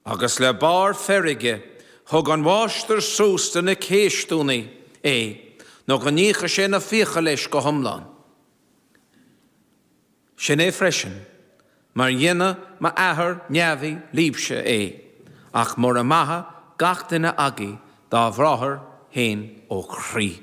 Agus le barr feirge, thug an mháistir suas do na céistiúnaí é nó go n-íocfadh sé na fiacha leis go hiomlán. Sin é freisin mar dhéanfadh m'athair neamhaí libse é, ach mura maithe gach duine agaí dá bhráthair fhéin ó chroí.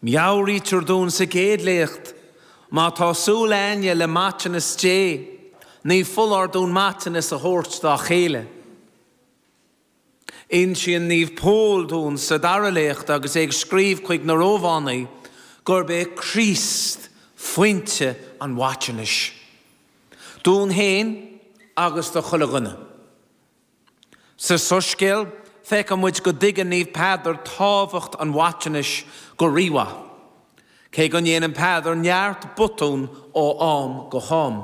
Meabhraítear dúinn sa gcéad léacht, má tá súil aigne le maiteanas Dé, ní foláir dúinn maiteanas a thabhairt dá chéile. Insíonn Naomh Pól dúinn sa dara léacht agus é ag scríobh chuig na Rómhánaigh gurb é Críost foinse an mhaiteanais, dúinn féin agus do chuile dhuine. Sa Soiscéal, feiceann muid go dtuigeann Naomh Peadar tábhacht an mhaiteanais go rímhaith, cé go ndéanann Peadar neart botún ó am go ham.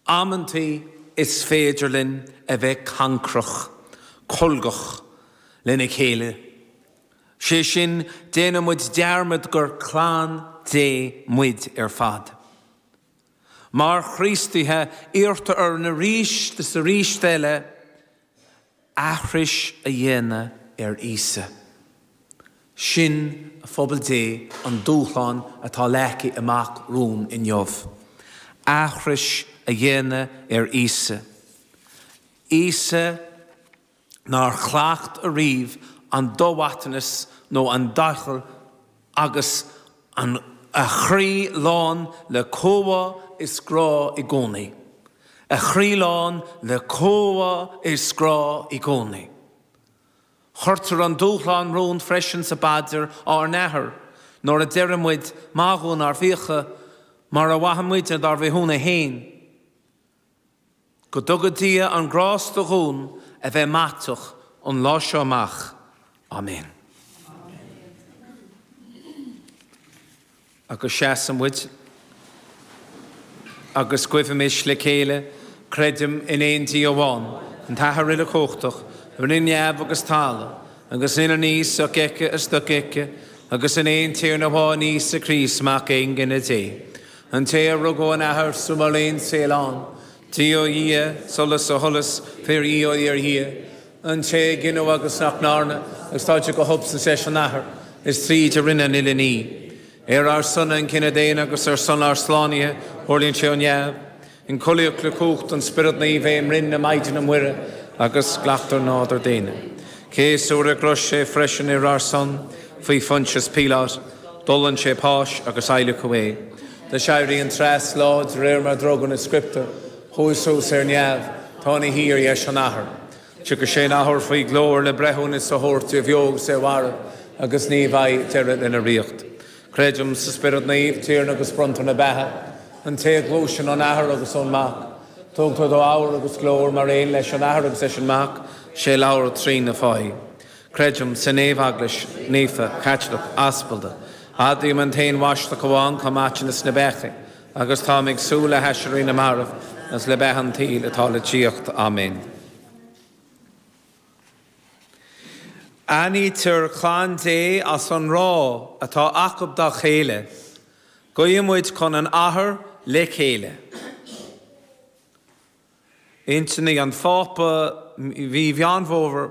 Amantaí is féidir linn a bheith cancrach, colgach lena chéile, sé sin, déanann muid dearmad gur clann Dé muid ar fad. Mar Chríostaithe, iarrtar orainn arís is arís eile aithris a dhéanamh ar Íosa. Sin, a Phobal Dé, an dúshlán atá leagtha amach romhainn inniu. Aithris a dhéanamh ar Íosa. Íosa. nár chleacht ariamh an do-mhaiteanas nó an doicheall agus a chroí lán le comhbhá is grá i gcónaí. A chroí lán le comhbhá is grá i gcónaí. Cuirtear an dúshlán romhainn freisin sa bPaidir Ár nAthair nuair a deireann muid, Maith dhúinn ár bhfiacha, mar a mhaitheann muide dár bhféichiúna fhéin. Go dtuga Dia an grásta dhúinn a bheith maiteach ón lá seo amach. Amen. Agus seasann muid agus guimhimis le chéile, Creidim in aon Dia amháin, an tAthair uilechumhachtach, a rinne neamh agus talamh, agus an uile ní sofheicthe is dofheicthe, agus in aon Tiarna amháin Íosa Críost, Mac Aonghine Dé. An té a rugadh ón Athair sula raibh aon saol ann, Dia ó Dhia, solas ó sholas, fíor Dhia ó fhíor Dhia, an té a gineadh agus nach ndearnadh, agus atá d'aon substaint leis an Athair, is tríd a rinneadh an uile ní. Ar ár son an cine daonna agus ar son ár slánaithe, thuirling sé ó neamh. Ionchollaíodh le cumhacht an Spioraid Naoimh é i mbroinn na Maighdine Muire agus ghlac sé nádúr daonna. Céasadh ar an gcrois é freisin ar ár son, faoi Phointius Píoláit, d'fhulaing sé páis agus adhlacadh é. D'aiséirigh an treas lá de réir mar a d'fhógair na Scrioptúir, chuaigh suas ar neamh, tá ina shuí ar dheis an Athar. Tiocfaidh sé in athuair faoi ghlóir le breithiúnas a thabhairt ar bheo agus ar mhairbh, agus ní bheidh deireadh lena ríocht. Creidim sa Spiorad Naomh, Tiarna agus Bronntóir na Beatha, an té a ghluaiseann ón Athair agus ón Mac, tugtar dó adhradh agus glóir mar aon leis an Athair agus leis an Mac, sé a labhair trí na fáithe. Creidim san aon Eaglais naofa, Caitliceach, Aspalda. Admhaím an t-Aon Bhaisteadh amháin chun maiteanas na bpeacaí, agus táim ag súil le haiséirí na marbh agus le beatha an tsaoil atá le tíocht. Áiméan. Aithnítear clann Dé as an ngrá atá acu dá chéile. Guíodh muid chun an Athar le chéile. Intinní an Phápa mí Mheán Fómhair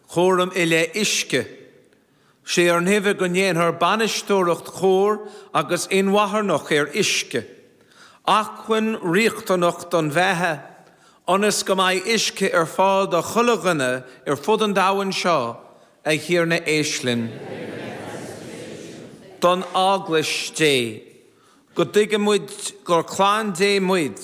cúram i leith uisce sé ár nguibhe go ndéanfar bainisteoireacht chóir agus inmharthanach ar uisce, acmhainn riachtanach don bheatha, ionas go mbeidh uisce ar fáil do chuile dhuine ar fud an domhain seo a Thiarna éist linn. don Eaglais Dé, go dtuigfidh muid gur clann Dé muid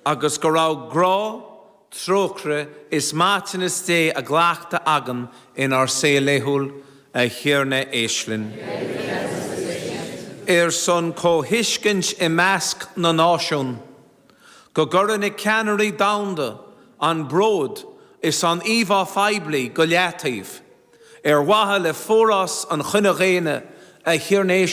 agus go raibh grá, Trócaire is maiteanas Dé á gcleachtadh againn inár saol laethúil, a Thiarna, éist linn. Ar son comhthuiscint i measc na náisiún, go gcuire na ceannairí domhanda an bród is an íomhá phoiblí go leataobh, ar mhaithe le forás an chine dhaonna, a Thiarna, éist linn.